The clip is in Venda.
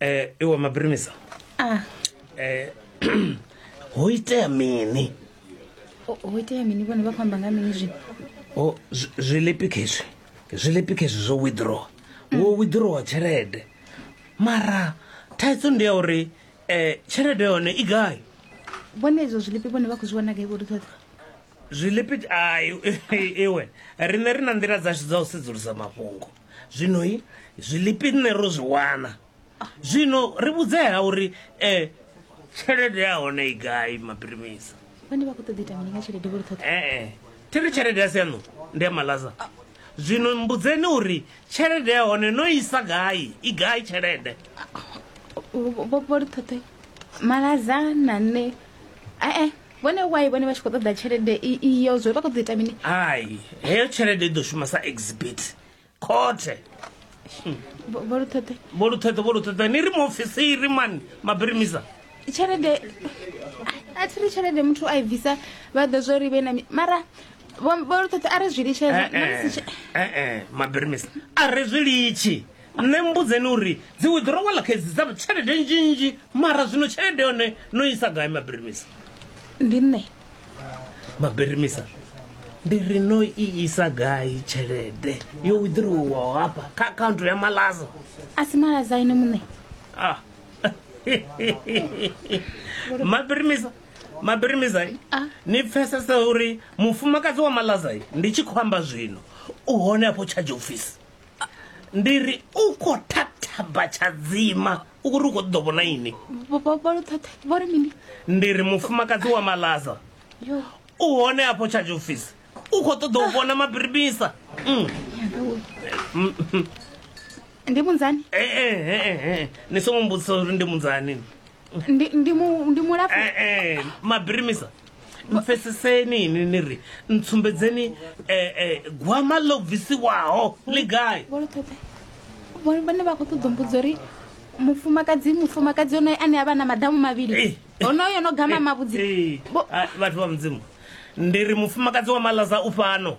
eh iwe mabrimisa ah eh ho itea mini o- ho itea mini vhone vha khou amba nga mini zwino o zwi- zwilipi khezwi zwilipi khezwi zwo withdraw wo withdrawa tshelede mara thaidzo ndi ya uri eh tshelede yone i gai vhone izwo zwilipi vhone vha khou zwi wana gai vho ṱhoḓa zwilipi ai iwe rine ri na nḓila dzashu dza u sedzulusa mafhungo zwino i zwilipi nṋe ro zwi wana zwino ri vhudzea uri um tshelede ya hone i gai mapirimisa vhane vha khou ṱoḓa ita mini nga tshelede vho ri ṱhoḓa ee thi ri tshelede ya sianu ndi ya malaza zwino mbudzeni uri tshelede ya hone no isa gai i gai tshelede vho ri ṱhoḓe malaza na nṋe ee vhone why vhone vha tshi khou ṱoḓa tshelede iyo zwo vha khou ḓo ita mini hai heyo tshelede i ḓo shuma sa exhibit khothe vholuṱheṱhe vholuṱheṱhe ni ri muofisiri mani mabirimisa tshelede a thi ri tshelede muthu a i bvisa vha ḓo zwo ri vhe na mara vholuṱheṱhe a ri zwi litshee eh, eh, eh, mabirimisa a ri zwi litshi Nṋe mmbudzeni uri dzi withdrawal kha edzi dza tshelede nnzhi nnzhi mara zwino tshelede yone no isa gai mabirimisa? Ndi nṋe. Mabirimisa ndi ri no i isa gai tshelede yo withdrawal hafha kha account ya Malaza? A si Malaza ene muṋe. Ah. Mabirimisa Mabirimisa ah. ni pfesesa uri mufumakadzi wa Malaza ndi tshi khou amba zwino u hone afho charge office. ndi ri u khou thathaba tshadzima u kuri u khou ṱoḓo vhona ini vhori mini ndi ri mufumakadzi wa malaza u hone afho charge office u khou ṱoḓa u vhona mabiribisa mm. mm, mm. ndi munzani eh, eh, eh, ni songo mbudzisa uri ndi munzani ndi mulapfu mabirimisa mpfeseseni ini ni ri ntsumbedzeni um eh, eh, gwama ḽo bvisiwaho ḽi gai vhane vha khou ṱoḓo mbudzo uri mufumakadzi mufumakadzi onoyo ane a vha na madamu mavhili eh, eh, onoyo no gama eh, mavhudzi vhathu vha mudzimu ndi ri mufumakadzi wa malaza u fhano